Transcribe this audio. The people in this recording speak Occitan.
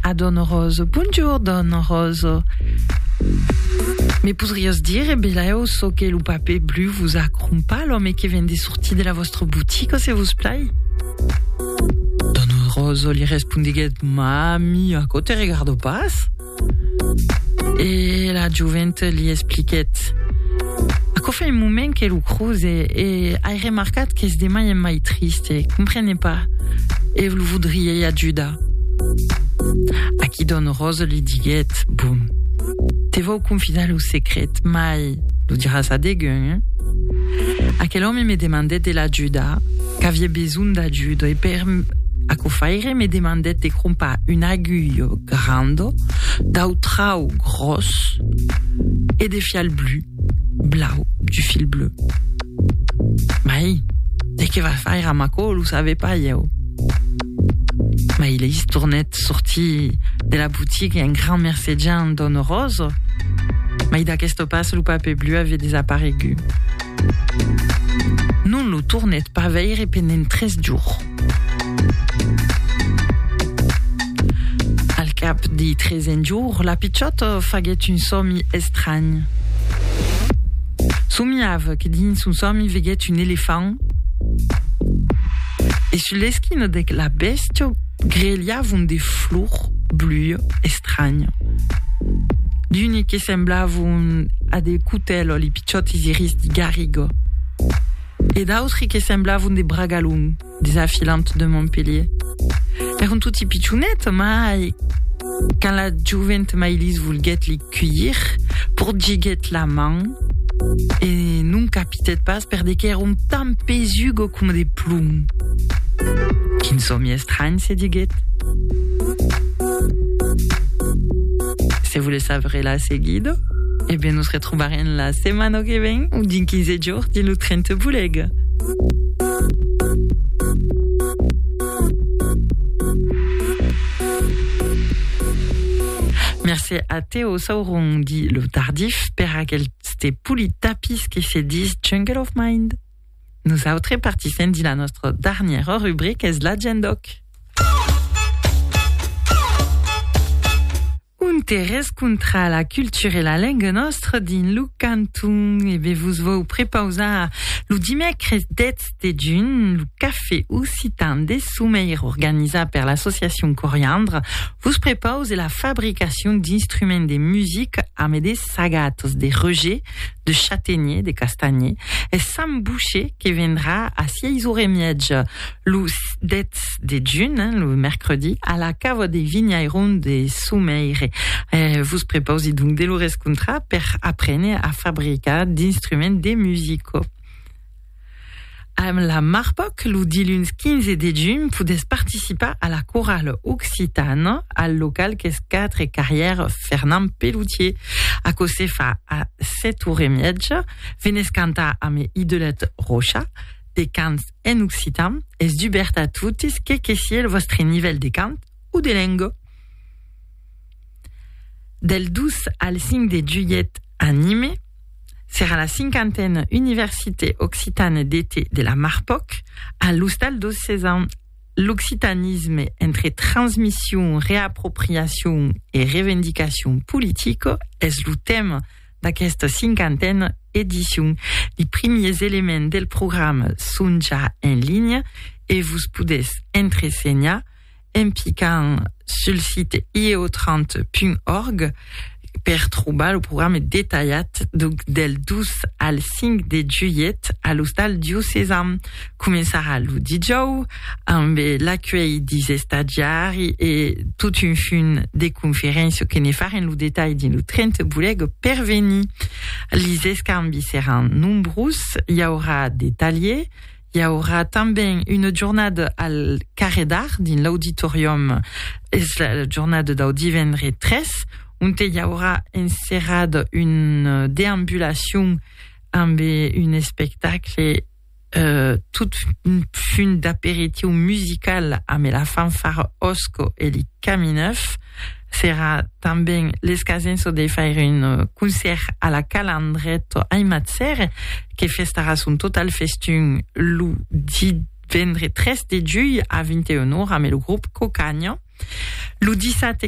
A don Rozo, Bonjour don Rozo. Me podries dire, Belèu, çò que lo papè blu vos a crompat, l'òme que ven de sortir de la vòstra botica, se vos plai? Don Rozo li respondiguèt, Ma ami, aquò te regarda pas? E la joventa li expliquèt, Aquò fa un moment que lo croze e ai remarcat qu'es de mai en mai triste, comprene pas, e lo vodriei ajudar. A qui don Rose li diguèt, Bon, te vau confidar lo secret, mai lo diràs a degun, eh? Aquel òme me demandèt de l'ajudar, qu'aviè besonh d'ajuda, e per aquò faire me demandèt de crompar un agulh grand dau trau gròs e de fial blu. Blau, du fil bleu. Mai, de que va faire à Maco, lo savais pas, ieu. Mai, il est tournet sorti de la boutique un grand mercegian donne rose. Mai d'aquest pas, le papier bleu avait désapparegut. Non lo tournet pas veire pendent tres jours. Al cap de tresen jours, la pichòt faguèt un sòmi estranh. Somiava que dins son sòmi veguèt un elefant e sus l'esquina de la bèstia grelhavon de flors blues estranhas. D'unes que semblavon a de cotèlos, li pichòtes iris de garriga. e d'autri que semblavon de bragalons desafilant de Montpelhier. Èron toti pichonets, mai quand la jovent Mailís volguèt li cuilhir, porgiguèt la man e non capitèt pas per de qu'èron tan pesugo coma de plom. Quin sòmi estranh, se diguèt. Se volètz saber la seguida, e ben nos retrobarem la setmana que ven o dinc 15 jorns. Or dins lo tren te volèg. Mercé a Teo Sauron, dit lo Tardif, per aqueste polit tapís que se dis Jungle of Mind. Nosautres partissem dins la nòstra darnièra rubrica, es l'Agendòc. Un terrés contra la cultura e la lenga nòstra dins lo canton. E be vos vòu prepausar lo dimècres 10 de junh lo Cafè occitan de Someir organizat per l'associacion Coriandre vos prepause la fabricacion d'instruments de musica amé de sagatas de Roger, de Chatenier, de Castanhier e Sam Boucher que vendrà a 6 ora e mièja. lo 10 de juny, hein, lo mercredi, a la cava de Vinhairon de Soumeire. Eh, vos prepausi donc de lo rescontrar per aprene a fabricar d'instruments de musico. Amb la Marpoc, lo diluns 15 de juny, podés participar a la corale occitana al local qu'es 4 carrière Fernand Pelloutier. A co se fa a 7 hores e miètja, venés cantar amb Idelette Rocha, de cants en occitan es dubèrt a totes que que sié lo vòstre nivèl de cant o de lenga. Del 2 al 5 de julhet a Nime serà la cinquantena Université Occitane d'Été de la Marpoc a l'Ostal dos Sesam, l'occitanisme entre transmission, reapropriation e revendicacion politica es lo tèma d'aquesta cinquantena edicion. Li primiers elements del programa son ja en linha e vos podètz entresenhar en picant sul site ieotrant.org per trobar lo programa detalhat del 2 al 5 de julhet a l'Ostal Diocesan. Començarà lo dijòu ambe l'acuèlh dis estadiari e tot un funt de conferéncia que ne farem lo detalh dins lo 30 Boleg per venir. Lis escambis seràn nombrós, i aurà de talhier, i aurà tanben una jornada al Carrè d'Art dins l'auditorium, es la jornada dau divendre 3, onte i aurà enserrada una deambulacion ambe un espectacle, Tot funt d'aperitiu musical ambe la fanfara Osco e li Camineuf. Serà tanben l'escasenço de faire un concèrt a la Cala Andretto ai Matzère, que festarà son total festun lo divendre 3 de julh a 21 ora ambe lo grop Cocagno. Lo dissabte